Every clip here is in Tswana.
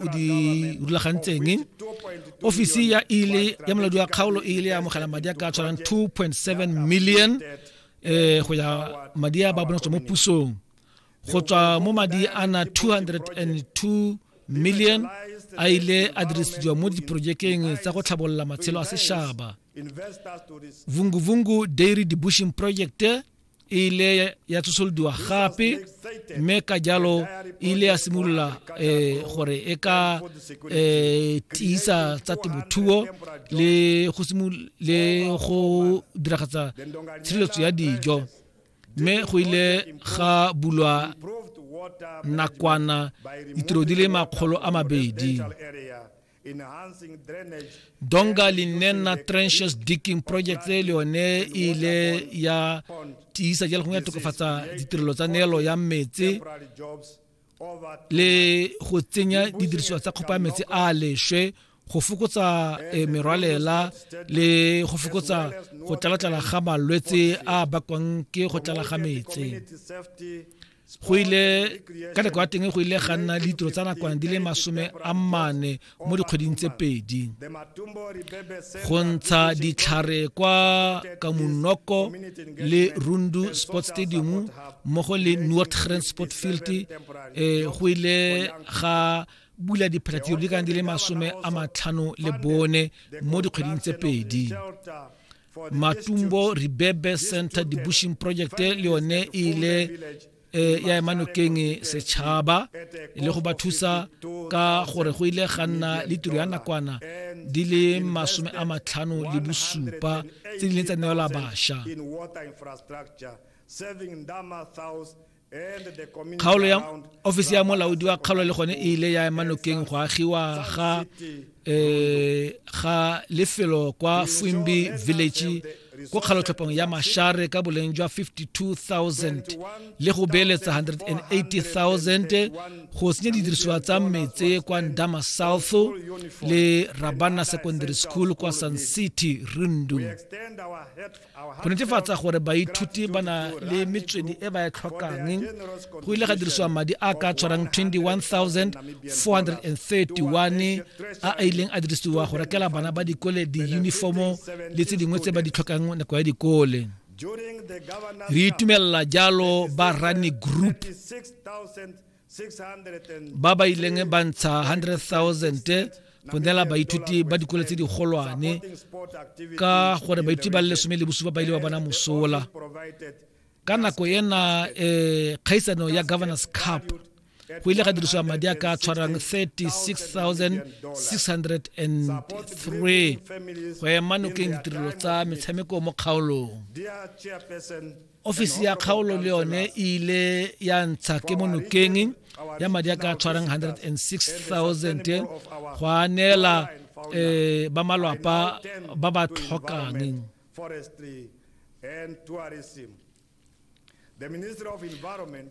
o di rulagantseng ofisi ya ile ya moladi wa kgaolo e ile ya amogela madi a ka tshwarang 2.7 million um go ya madi a ba bonetswe mo pusong go tswa mo madi a na 202 million a ile a dirisediwa mo diporojekeng tsa go tlhabolola matshelo a sešaba vunguvungu dairy debushing project e ile ya tsosolodiwa gape mme ka jalo e ile ya simolola um gore e ka um tiisa tsa temothuo le go le go diragatsa tshireletso ya dijo mme go ile ga bulwa nakwana ditiro di le makgolo a mabedi donga li nena trenches digging project e le yone e ile ya tiisa jalo gongwe ya tokafatsa ditirelo tsa neelo ya metse le go tsenya didirisiwa tsa kgopa metse a lešwe go fokotsa e, merwalela le go fokotsa go tlalatlala ga malwetse a bakwang ke go tlala ga metse go ile ka nako ya teng go ile ga nna ditiro tsa nakwana di le masome a mane mo dikgweding tse pedi go ntsha ditlhare kwa kamunoko le rundu sport stadium mmogo le nordgren sport field um go ile ga bula diphatlhatiro di kana di le masome a matlhano le bone mo dikgweding tse pedi matumbo ribebe center dibushing project le yone e ile eh, ya ema nokeng setšhaba le go ba thusa ka gore go ile ga nna le tiro ya nakwana di le masome a matlhano le bosupa tse di leng tsa neela basha kgaolo ya ofisi ya molaodi wa kgaolo le gone e ile ya ema nokeng go agiwa ga um ga lefelo kwa fuimbi village ko kgalotlhopong ya mashare ka boleng jwa 52000 le go beeletsa 180000 go senya didirisiwa tsa metse kwa ndama south le rabana secondary school kwa sun city rundu Go netefatsa gore baithuti ba na le metswedi e ba e tlhokang, go ile ga dirisiwa madi a ka tshwarang 21,431 a a ileng a dirisiwa go rekela bana ba dikole diyunifomo le tse dingwe tse ba di tlhokang nako ya dikole. Re itumelela jalo ba Rani Group. ba ba ileng ba ntsha 100,000 go neela baithuti ba dikole tse digolwane ka gore baithuti ba le lesome le bosupa ba ile ba bona mosola ka nako ena um kgaisano ya governors cup go ile ga dirisiwa madi a ka tshwarang 36603 go ema nokeng ditirelo tsa metshameko mo kgaolong ofisi ya kgaolo le yone e ile ya ntsha ke mo nokeng ya madi a ka tshwarang 106000 go a neela um ba malwapa ba ba tlhokang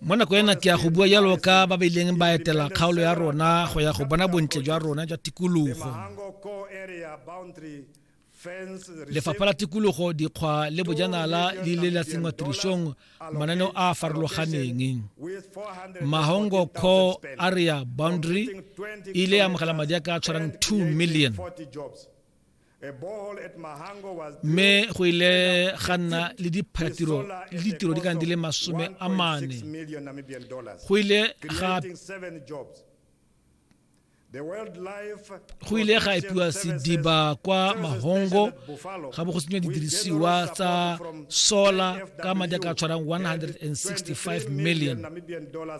mo nako ena ke ya go bua jalo ka ba ba ileng ba etela kgaolo ya rona go ya go bona bontle jwa rona jwa tikologo lefapha la tikologo dikgwa le bojanala le ile la tsenngwa tirisong mananeo a a farologaneng mahongo core area boundary e ile ya amogela madi a ka tshwarang 2 million mme go ile ga nna le diphatiro le ditiro di kana di le masome a mane go ile ga go ile ga epiwa sediba kwa mahongo ga bo go senywa didirisiwa tsa solar ka madi a ka tshwarang 165 million